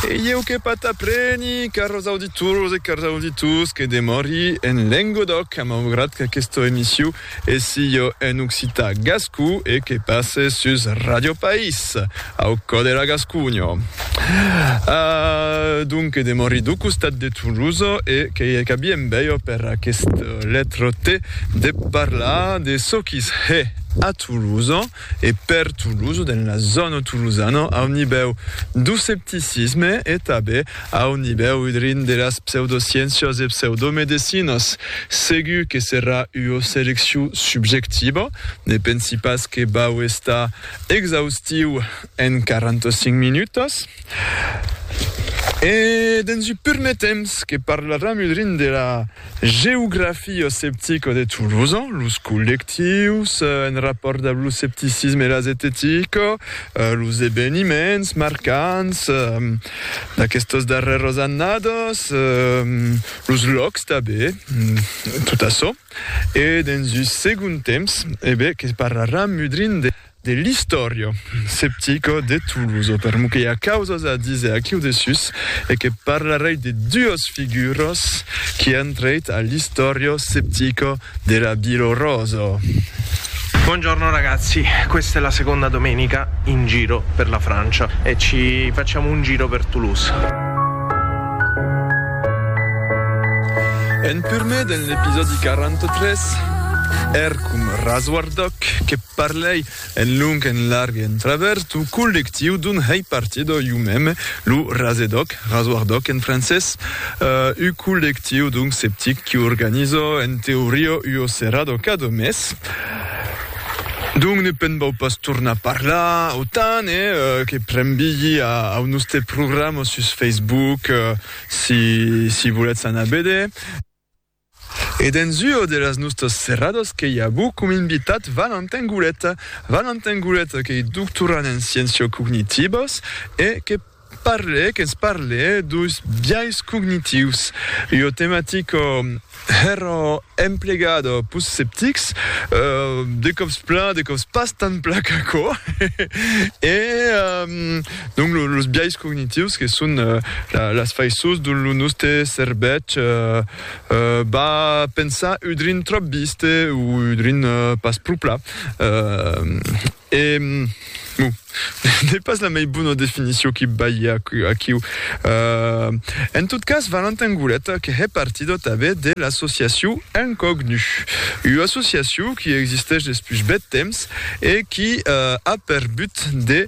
E ieu que pas t'apreni, cars auditors e cars auditors, que demòri en Lengodoc, maugrat qu'aquesta emissiu e sieu en occitan gascou e que passe sus Radio País, au cò de la Gasconha. Ah! donc que demòri dau costat de Toulouse e que i qu'abi en bèio per aquesta letra T de parlar de çò qu'i's hè a Toulouse, e per Toulouse, dens la zòna tolosana, a un nivèu d'oscepticisme e tanben a un nivèu udrin de las pseudosciéncias e pseudomedecinas. Segur que serà ua selecciu subjectiva, ne pensi pas que vau estar exaustiu en 45 minutas. E dens un pur metemps que parlaram udrin de la. Geografio septico de Tolosa, los collectius en rapòrt amb lo septicisme e la zetetico, los eveniments marcants d'aquestos darrèros annados, los lòcs tanben, tot açò e dens un segond temps, e ben que parraram mudrin de. de l'istòria septica de Tolosa, per lo que i a causas a díser aquiu dessús, e que parlarèi de duas figuras qui an trèit a l'istòria septica de la Vila Rosa. Buongiorno ragazzi, questa è la seconda domenica in giro per la Francia e ci facciamo un giro per Toulouse. En purmé den l'episòdi 43, èrcom rasguardòc que. Parlèi en long, en larg e en travèrs dau collectiu dont hèi partida iu mème, lo Rasedoc, Rasoardoc en francés, ua collectiu dont sceptic qui organiza en teoria ua serada cada mes. Dont ne pèn vau pas tornar parlar autant e que prembilhi au noste programa sus Facebook si si volètz anar veder. E dens ua de las nustas serradas qu'ei avu com invitat Valentin Goulet. Valentin Goulet qu'ei doctorant en sciéncias cognitives e que parle, que'ns parle deus biais cognitius, ua tematica hèra emplegada pus sceptics, de còps plan, de còps pas tant plan qu'aquò, e Donc los biais cognitius que son las faiçons dont lo nòste cervèth va pensar un drin tròp viste o un drin pas pro pla. E bon, n'ei pas la mei bona definició qui balhe aquiu. En tot cas, Valentin Goulet que hè partidò tanben de l'associaciu Incognu, ua associaciu qui existesh despús bèth temps e qui a per but de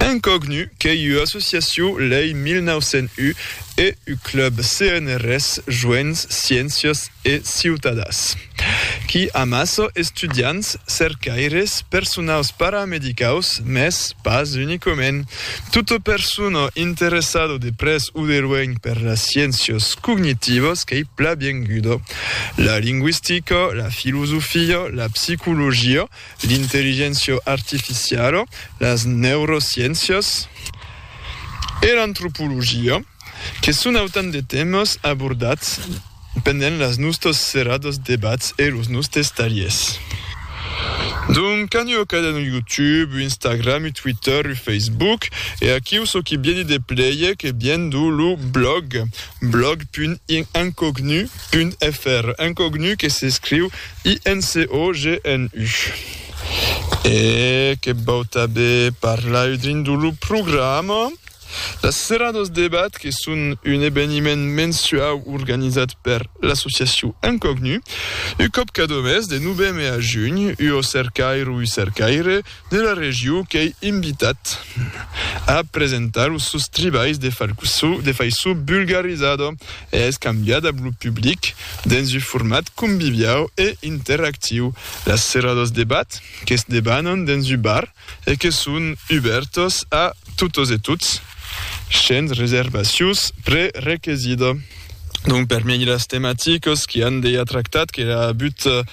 Incognu qu'ei ua associacion lei 1901 e u club CNRS Joents Sciéncias e Ciutadas, qui amassa estudiants, cercaires, personaus paramedicaus, mès pas unicament. Tota persona interessada de pres o de luenh per las sciéncias cognitivas qu'ei pla bienguda. La lingüistica, la filosofia, la psicologia, l'intelligéncia artificiala, las neurosciéncias e l'antropologia, que son autant de tèmas abordats pendent las nòstas serradas debats e los nòstes talhers. Donc aneu a cadun YouTube u Instagram u Twitter u Facebook e aquiu çò qui bieni de player que biendu lo blog blog.incognu. Un èfer incognu que s'escriu INCOGNU. E que vau tanben parlar dins lo programa. Las Seradas Debat que son un eveniment mensuau organizat per l'associacion Incognu, un còp cada mes de noveme a junh, ua cercaira o un cercaire de la regiu qu'ei invitat a presentar los sòus tribais de faiço bulgarizada e es cambiat ab lo public dens u format conviviau e interactiu. Las serradas debat que's debanan dens u bar e que son ubèrtas a totas e tots shens reservacius prerequesida. Donc per mi las tematicas qui an dejà tractat qu'era but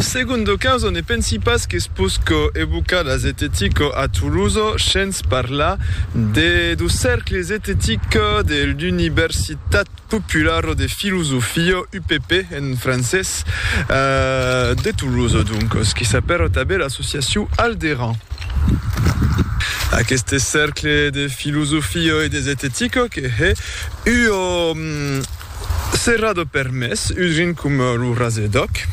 Segundo caso, ne pensi pas qu'es posco evocar la zetetica a Tolosa shens parlar de lo Cercle zetetic de l'Universitat Populara de Filosofia, UPP en francés, de Tolosa, doncas, que s'apèra tanben l'associacion Alderan. Aqueste Cercle de Filosofia e de Zetetica que hè ua Serà de permés udrin coma lo Rasedoc.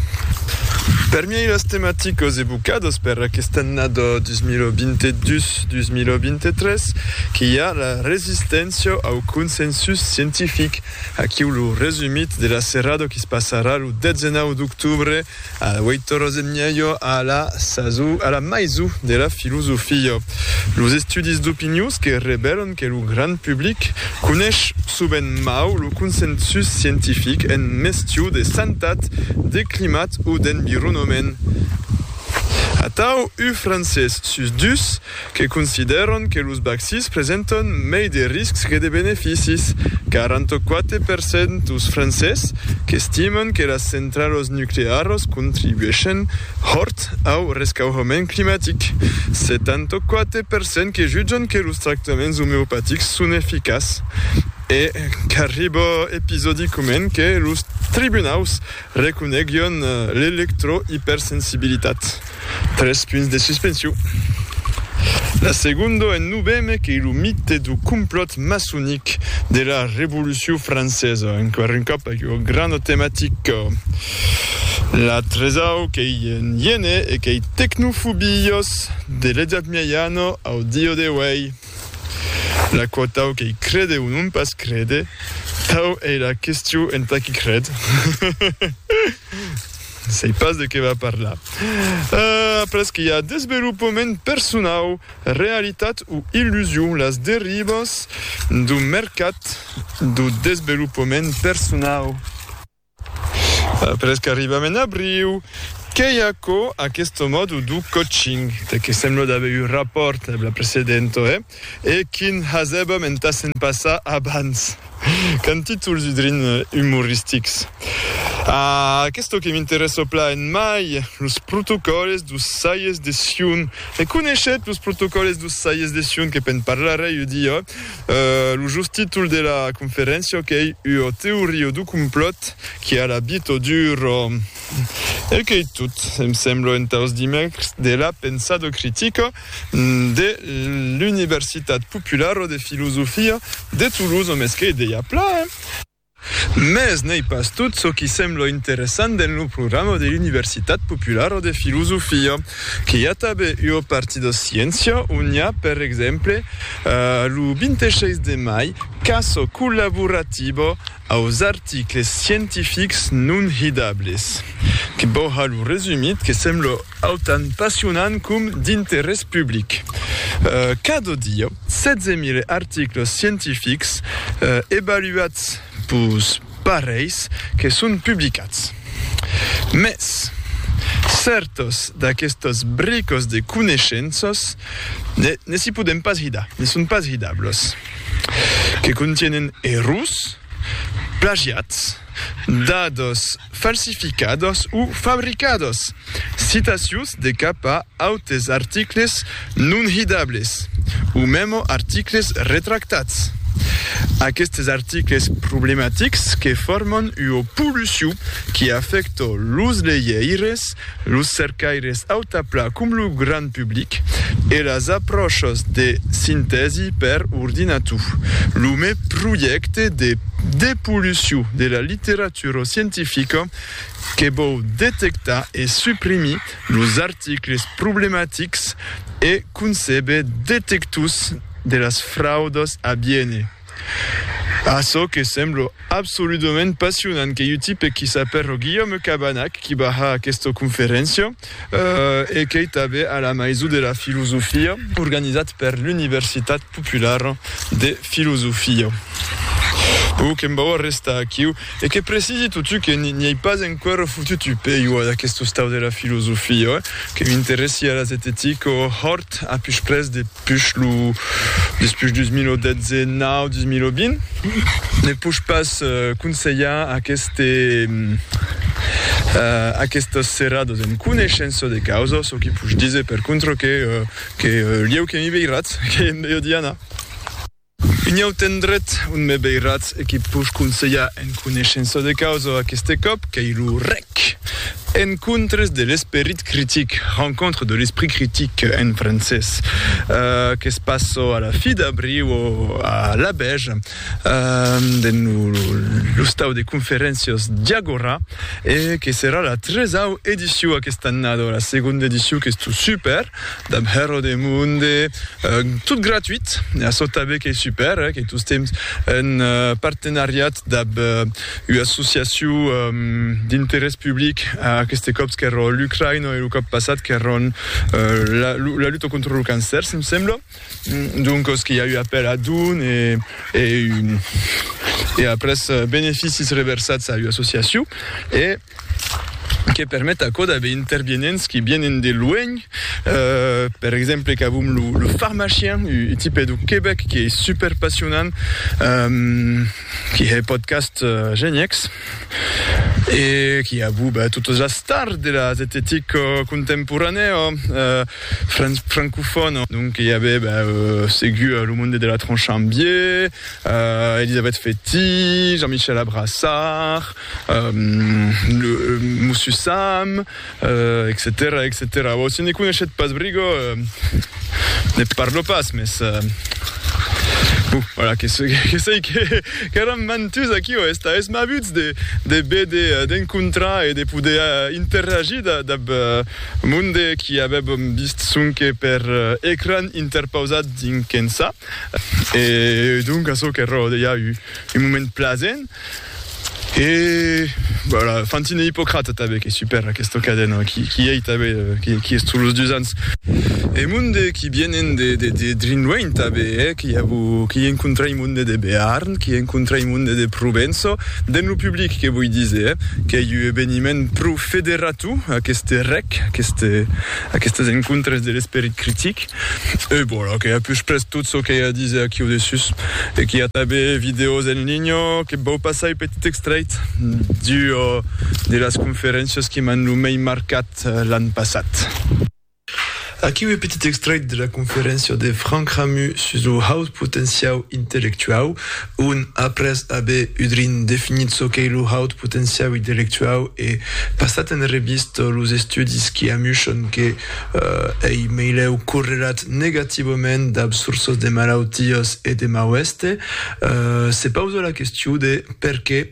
Permiei las tematicas evocadas per aquesta annada 2022-2023 que i a la resisténcia au consensus scientific. Aquiu lo resumit de la serrada que's passarà lo 19 d'octobre Auei toros en mièlho a la saso, a la maiso de la filosofia. Los estudis d'opinions que revèlan que lo grand public conesh sovent mau lo consensus scientific en mestiu de santat, de climat o d'environament. Atau, uu francés sus dus que considèran que los vaccins presentan mei de riscs que de beneficis, 44 per cent dos Francés qu'estiman que las centralas nuclearas contribuèshen hòrt au rescaurament climatic, 74 per cent que jutjan que los tractaments omeopatics son eficaç e qu'arriba episodicament que los tribunaus Reconeguion l'electroipersensibilitat, tres punts de suspension. La segondo en noveme qu'ei lo mite du complòt maçonic de la Revolucion francesa, enqüèr un còp aquò grana tematica. La tresau qu'ei en iene e qu'ei tecnofobios de l'Edat Mieiana au dieu de uèi. L'aquò tau qu'ei crede o non pas crede, tau ei la questió entà qui cred. Sei pas de qué va parlar. Après que i a desvelopament personau, realitat o illusion, las derivas dau mercat dau desvelopament personau. Après qu'arribam en abriu, qu'ei aquò aqueste mòdu du coaching, de que sembla d'aver eu rapòrt eb la precedenta, eh? e quin hasèbam entà se'n passar abans! Qu'an títol sudrin umoristics. Ah, aqueste que m'interèssa plan en mai, los protocòles dus saies de Sion. E coneishet los protocòles dus saies de Sion, que pe'n parlarè ua dia? Lo just títol de la conferéncia qu'ei Ua teoria du complòt que a la bit o duro. E qu'ei tot, em semblo, entaus dimècres de la Pensado Critica de l'Universitat Populara de Filosofia de Toulouse, o mès qu'ei dejà plan, hein? Mès n'ei pas tot çò qui sembla interessant dens lo programa de l'Universitat Populara de Filosofia, que i a tanben ua parti de sciéncia, ont i a, per exemple, lo 26 de mai, Caça collaborativa aus articles scientifics non hidables, que vau har lo resumit, que sembla autant passionant com d'interès public. Cada dia. 16.000 articles scientifics evaluats pus parelhs que son publicats. Mès, cèrtas d'aquestas bricas de coneishenças ne si podèm pas hidar, ne son pas hidables, que contienen errors, plagiats, dados falsificados o fabricados, citacions de cap a autes articles non hidables o memo articles retractats. Aquestes articles problematics que forman ua pollucion qui afècta los legeires Los cercaires autapla com lo grand public e las apròchas de sintèsi per ordinator. Lo me projècte de depollucion de la literatura scientifica que vòu detectar e suprimir los articles problematics e concebe detectors de las fraudas a biene. Açò que semblo absoludament passionant qu'ei un tipe qui s'apèrro Guillaume Cabanac qui va har aquesta conferéncia e qu'ei tanben a la Maison de la Filosofia organizat per l'Universitat Populara de Filosofia. Bon, que'm vau arrestar aquiu. E que precisi totu que n'i ei pas enqüèra fotut un pèiu ad aqueste ostau de la filosofia, oi? Que m'interessi ara zetetica o hòrt a pus près de pus lo despuish 2019, 2020, ne posh pas conselhar aqueste aquestas serradas en coneishença de causa, çò qui posh díser per contra que que lieu que mi veiratz, qu'ei en meiodiana. Un autre endret ont me veiratz e que puc conselhar en coneishença de causa aqueste còp qu'ei lo rec. Encontres de l'esperit critic, Rencontres de l'esprit critique en francés, que's passo a la fi d'abriu o a l'abèr dens lo lostau de conferéncias Diagora e que serà la tresau ediciu aquesta annada o la segonda ediciu qu'es tot super. Dab hèr o demonde, tot gratuit, e açò tanben qu'ei super, qu'ei tostemps un partenariat dab ua associacion d'interès public, aqueste còps qu'èra l'Ucraïna e lo còp passat qu'èra la luta contra lo cancèr, se me sembla, doncas qu'i a ua apèl a don e après beneficis reversats a ua associacion e. que permet aquò d'aver intervienents qui vienen de luènh, per exemple qu'avum lo Pharmachien, un tipe de Quebec qui es super passionant, qui hè podcast geniècs, e qui avú ben totes las stars de la zetetica contemporanèa francofòna, donc i avè ben segut lo monde de la Tronchambier, Elisabeth Fety, Jean-Michel Abrassard, Monsieur Sam, etcetèra, etcetèra. Bon, si ne coneishetz pas brigo, ne parlo pas, mès, bon, voilà, que sei qu'èran mantuts aquí o esta esmabuts de béder, d'encontrar e de poder interagir dab monde qui avèbam vist sonque per ecran interpausat dinc ençà. E donc, açò qu'èra, deia, un moment plasent. E voilà, Fantine e Ippocrate tanben qu'es super aquesta cadena qui qui ei tanben qui qui es tous los dus ans. E monde qui vienen de de de drin luenh tanben eh qui a vu qui encontrai monde de Bearn qui encontrai monde de Provenço den lo public que voi diser eh qu'ei u eveniment pro federatu aqueste rec, aqueste Aquestes encontres de l'esperit critic. E voilà que a pus pres tot çò qu'ei a díser aquiu dessús. E qu'i a tanben vidèos en linha que vau passar un petit extrèit d'ua de las conferéncias que m'an lo mei marcat l'an passat. Aquiu un petit extrèit de la conferéncia de Frank Ramus sus lo haut potenciau intellectuau. Un, après aver udrin definit çò qu'ei lo haut potenciau intellectuau e passat en revista los estudis qui amuchan que ei meilèu correlat negativament dab sorças de malautias e de mauèste, se pausa la question de perqué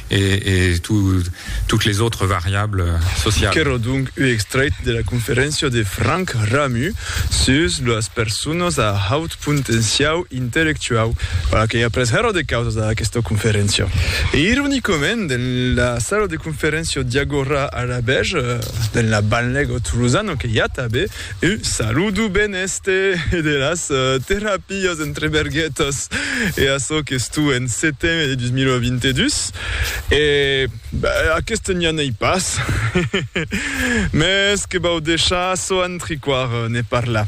et, et tout, toutes les autres variables sociales. Qu'èra donc un extrèit de la conferéncia de Franck Ramus sus las personas a haut potenciau intellectuau. Voilà que i a pres hèra de causas a aquesta conferéncia. E ironicament, dens la sala de conferéncia Diagora a Labège, dens la banlèga tolosana que i a tanben Un saludo ben èste e de las terapias entre berguetas e açò qu'es tu en seteme de 2022 e ben aqueste n'i anei pas, mes que vau deishar açò antriquar ne parlar.